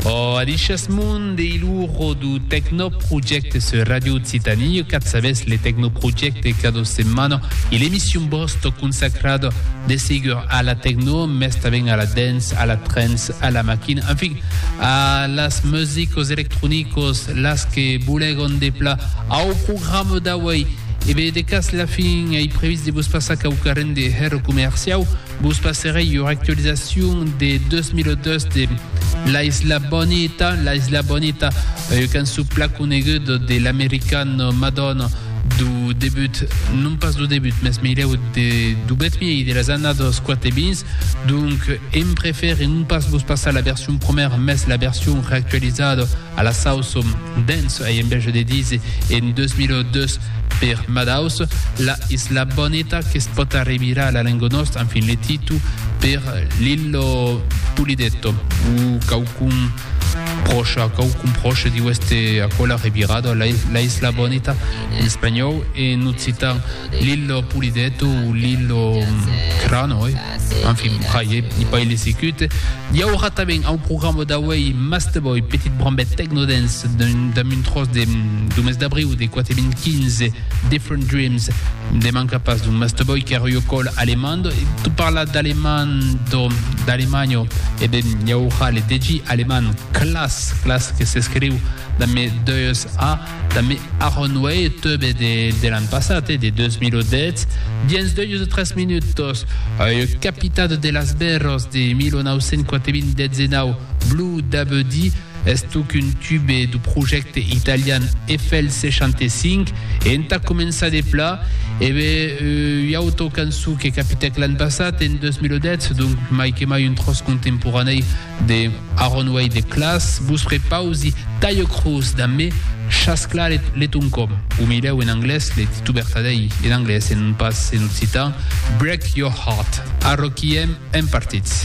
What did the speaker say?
O adishes mon de iluro du Tecnoprojecte sur Radio Occitanie, e cat sabes le Tecnoprojecte cada setmana e l'emission bosto consacrada de segur a la tecno, mes taben a la dance, a la trance, a la machine, en fin, a las musicos electronicos, las que bolegon de pla au programa d'auei. E bé, de cas la fin, ei previst de vos passar quauquarren de hèr comerciau, Vos passerei ua actualizacion de 2002 de La Isla Bonita. La Isla Bonita, ua cançon pla coneguda de l'americana Madonna du debut, non pas du debut, mes meilèu de, du bèth miei de las annadas 4 e 20. Donc, em prefère non pas vos passar la version promèra, mes la version reactualizada, A la sau som dens ei en biaja de dise en 2002 per Madaus, la isla boneta que's pòt arrimirar a la lenga nòsta, enfin le titu per l'illo Pulidetto o quauqu'un pròcha, quauqu'un pròche diu èste aquò la revirada, la isla boneta en espanhòu e en occitan l'illo Pulidetto o l'illo Crano, oi? En fin, pr'aie i pas le sicut. I aurà tanben au programa d'auei Masteboy, petit brambet techno-dance damb un tròç de du mes d'abriu de 4015, Different Dreams. Ne manca pas d'un Masteboy que reucòl alemand. Tu parla d'alemando, d'alemanho, e ben i aurà le DJ alemand Klass, Klass que s'escriu damb 2 A, Damb Aaron Way, eth teube de l'an passat, de 2010, dens deus o tres minutos, ua capitada de las Berros de 1984, dezenau Blue Dabuddy, estoc un tube du projècte italian Eiffel 65, e entà començar de pla, ebe ua auto cançon que capitèc l'an passat, en 2010, donc mai que mai un tròç contemporanèi De Aron uei de clas vos prepausi Taio Cruz dambe Chas Claret Letuncom, o milhèu en anglés, le titu vertadèi en anglés e non pas en occitan, Break Your Heart, Arroquiem en partits.